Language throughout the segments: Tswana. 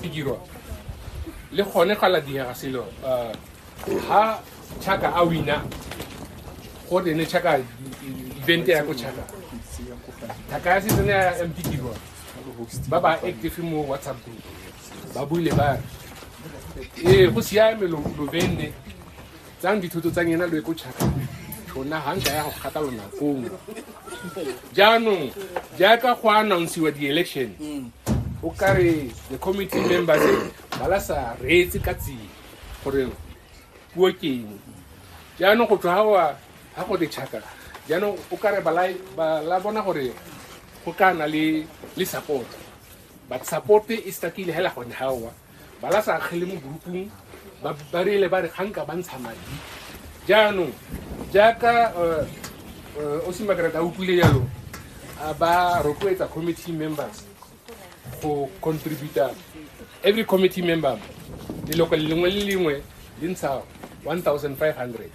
di dirwa le gone ga la diega selo um ha chaka a wina go tene chaka evente ya ko chaka thaka ya setsene ya mp dirwa ba ba active mo whatsapp group ba buile ba re ee go siame lo benne tsang dithoto tsa ngena lo ye ko chaka tshona ga nka ya go kgata lonakong jaanong jaaka go announcewa di-election o kare the committee members ba la sa reetse ka tsela gore puo ke eng jaanong go tswa gawa ga go ditšhaka jaanong o kare ba la- ba la bona gore go ka na le le support but support e stakile hela gone gawa ba la sa akgele mo grupung ba ba rile ba re ga nka ba ntsha madi jaanong jaaka eh, eh, o simakarata a utlwile jalo a ba rotloetsa committee members go contributa every committee member leloko lengwe le lengwe le ntsha 1500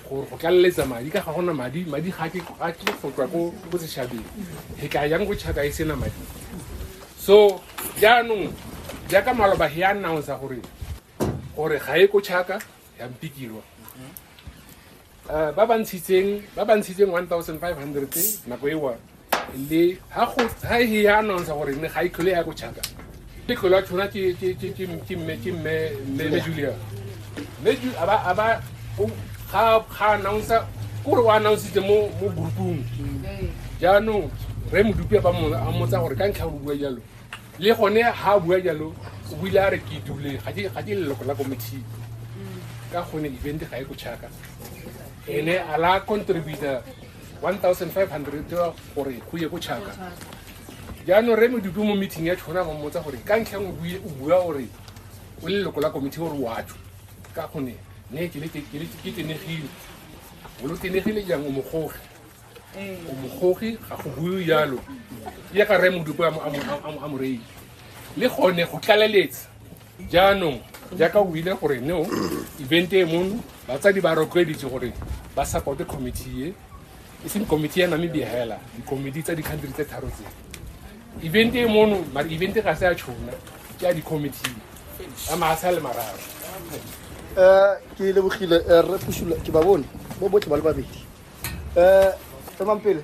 gore go tlaleletsa madi ka ga gona madi madi ga ke ga ke go tswa ko ko seshabeng he ka yang go chaka e sena madi so jaanong jaaka maloba he announce gore gore ga e ko chaka ya mpikilwa Eh, ba ba ntshitseng ba ba ntshitseng 1500 nako ewa le ha go ha e ya announce gore ne ga e tlhole ya go chaka le tlhole ya tshwana ke ke ke ke ke mme ke mme mme mme Julia mme Ju a ba a ba o ga ga announce ke gore o announce mo mo groupung jaanong re modupi ba mo a motsa gore ka ntlha o bua jalo le gone ha a bua jalo o buile a re ke dule ga ke ga ke leloko la committee ka gone event ga e go chaka ene a la contributor 1500 gore go ye ko chaka jaanong re medupi mo meeting ya tshona ba mmotsa gore ka ntlha nngwe o bua gore o le leloko la komiti gore wa tsho ka gone ne ke tenegile o lo tenegile jang o mogoge o mogoge ga go bue jalo ya ka re modupi a moreile le gone go tlaleletsa jaanong jaaka o ile gore no event e mono batsadi ba rotloeditse gore ba supporte committee e e seng committee ya namibia hela di-committee tsa di-country tse tharo tse event e mono mare event ga se ya tšhona ke ya di-committee a maase a le mararo um ke lebogile eh, rre pusula ke ba bone bo botlhe ba le babedi um tsamang pele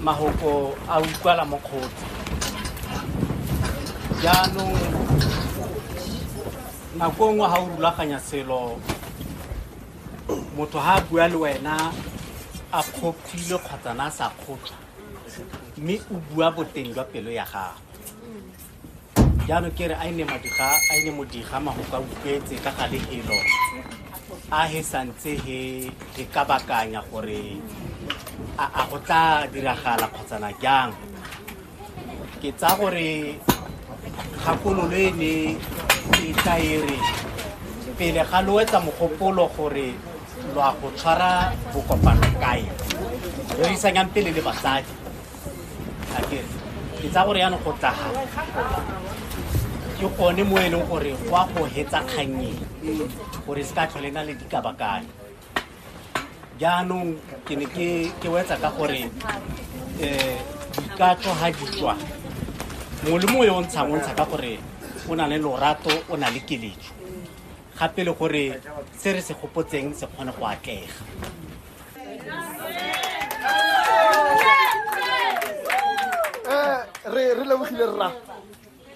mahoko a utlwala mo kgotsi jaanong nako nngwe ga o rulaganya selo motho ga a bua le wena a kgopile kgotsa na a sa kgopsa mme o bua boteng jwa pelo ya gago jaanong ke re a ene madiga a ene modiga magoka utlwetse ka gale elo a he santse he he ka bakanya gore a a go tla diragala kgotsana jang ke tsa gore kgakololo e ne e tla e re pele ga lo etsa mogopolo gore lo a go tshwara bokopano kae rerisanyang pele le basadi akere ke tsa gore yanong go tlaga ke gone mo e leng gore go a go hetsa kgannyeng gore se ka tlhole na le dikabakane jaanong ke ne ke wetsa ka gore um dikatso ga di tswa mongwe le mongwe yo o ntshang o ntsha ka gore o na le lorato o na le keletso gape le gore se re se gopotseng se kgone go atlega Eh, re re lebogile rra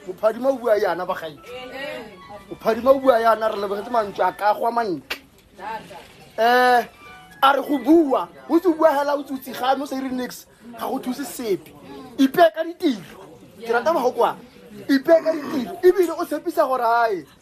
mophadima o bua yana bagae mophadima o bua yana re lebogetse mantswe a ka gwa mantle um a re go bua o tse o bua hela o tsutsi ga no sa ire nix ga go thuse sepe ipee ka ditiro ke rata mago kwa ipee ka ditiro ebile o tshepisa gore ae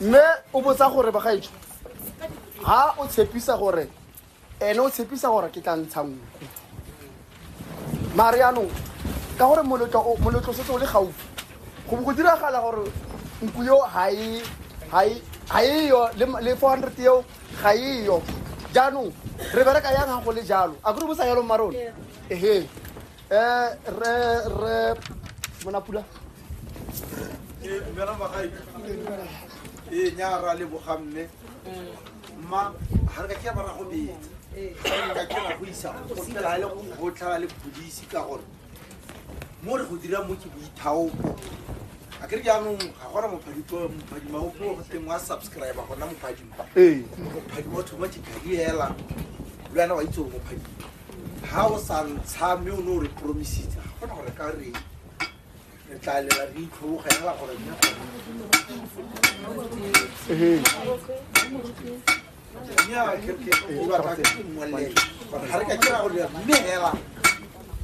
mme o botsa gore bagaetso ga o tshepisa gore ene o tshepisa gore ke tla ntsha nngwe mare yaanong ka gore moletlo setse o le gaufi go bo go diragala gore nku yo ga eyo le four hundred eo ga eyo jaanong re bereka yang ga go le jalo a kore bo sa yalo marone ehe um re re monapula ee nyaa ra lebogamme mma ga re ka kira bara go betsa ka kira go isa go fela le go botlhaba le polisi ka gore mo re go dira mo ke boithaopo a kere jaanong ga gona mophadima o puo go teng wa subscribe gona mophadima mophadima o thoma dikadi hela le wena wa itse gore mophadima ga o sa ntsha mme o ne o re promisitse ga gona gore ka reng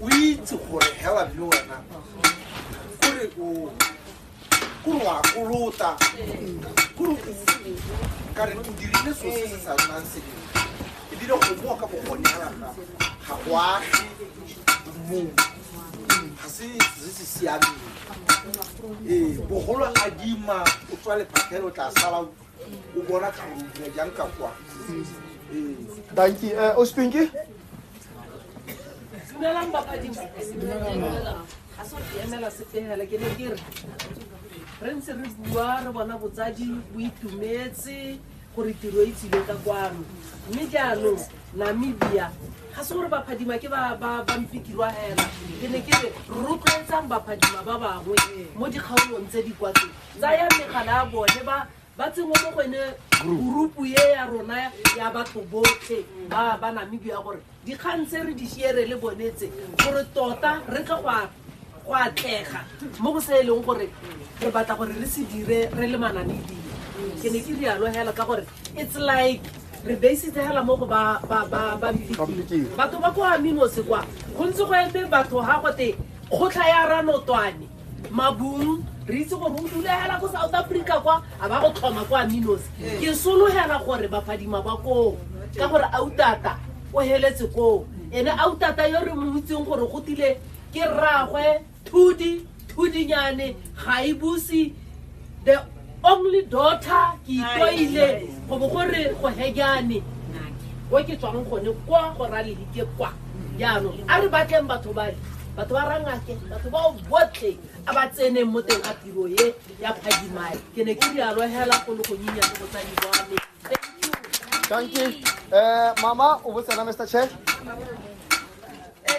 o itse gore hela le wena kore o kore wa kolota kore o kare o dirile so se se sa nnang seneng ebile go moa ka bogoneela ga go age mong ga se se se siameng ee bogolo a dima o tswa lephatlhelo tla sala o bona tlhorobile jang ka kwa ee danki um eh, o spinki dumelang bapadi ga se ke emela setegele ke ne ke re re ntse re bua re bona botsadi bo itumetse gore tiro e tsile ka kwano mme jaanong namibia ga se gore baphadima ke ba mpikirwa hela ke ne ke re rotloetsang baphadima ba bangwe mo dikgaolong tse di kwatse tsaya megala ya bone ba ba tsengwe mo go ene gurupu e ya rona ya batho botlhe ba namibia gore Dikgang tse re di share le bone tse gore tota re tle go a- go atlega mo go se e leng gore re batla gore re se dire re le manamedile ke ne ke rialo hela ka gore it's like re basitse hela mo go ba ba- ba- ba Mpikiri. batho ba ko aminose kwa go ntse go eme batho ga gote kgotlha ya ranotwane mabung re itse gore o dulegela ko south africa kwa a ba go tlhoma kwa minos ke sologela gore baphadima ba koo ka gore autata o heletse koo ene autata yo re mo itseng gore go tile ke rragwe thudi thudinyane ga e buse the only daughter ke itloile go bo gore go hejane ko ke tswang gone kwa go raledi ke kwa jaanong a re batleng batho bale batho ba rangake batho bao botlhe a ba tseneng mo teng ga tiro ye ya phadimae ke ne ke dialo hela go le go nyinya le botsadi bwane thank you um mama o botsena mr chair eh,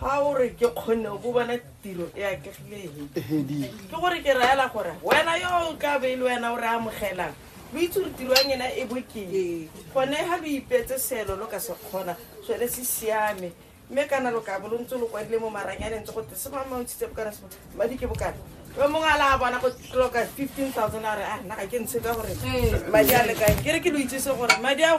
ga o re ke kgonne o bo bona tiro e akegileng ke gore ke raela gore wena yo o ka be le wena o re amogelang lo itse gore tiro ya ngena e bokeng gone ga lo ipetse selo lo ka se kgona sone se siame mme kana lo ka bo lo ntse lo kwadile mo maranyaneng tse gote se mamantshitse bokana se madi ke bokana yo mongwe a la bona go tloka fifteen thousand a re a ah, nna ga ke ntshe ka gore madi a lekang ke re ke lo itsese gore madi ao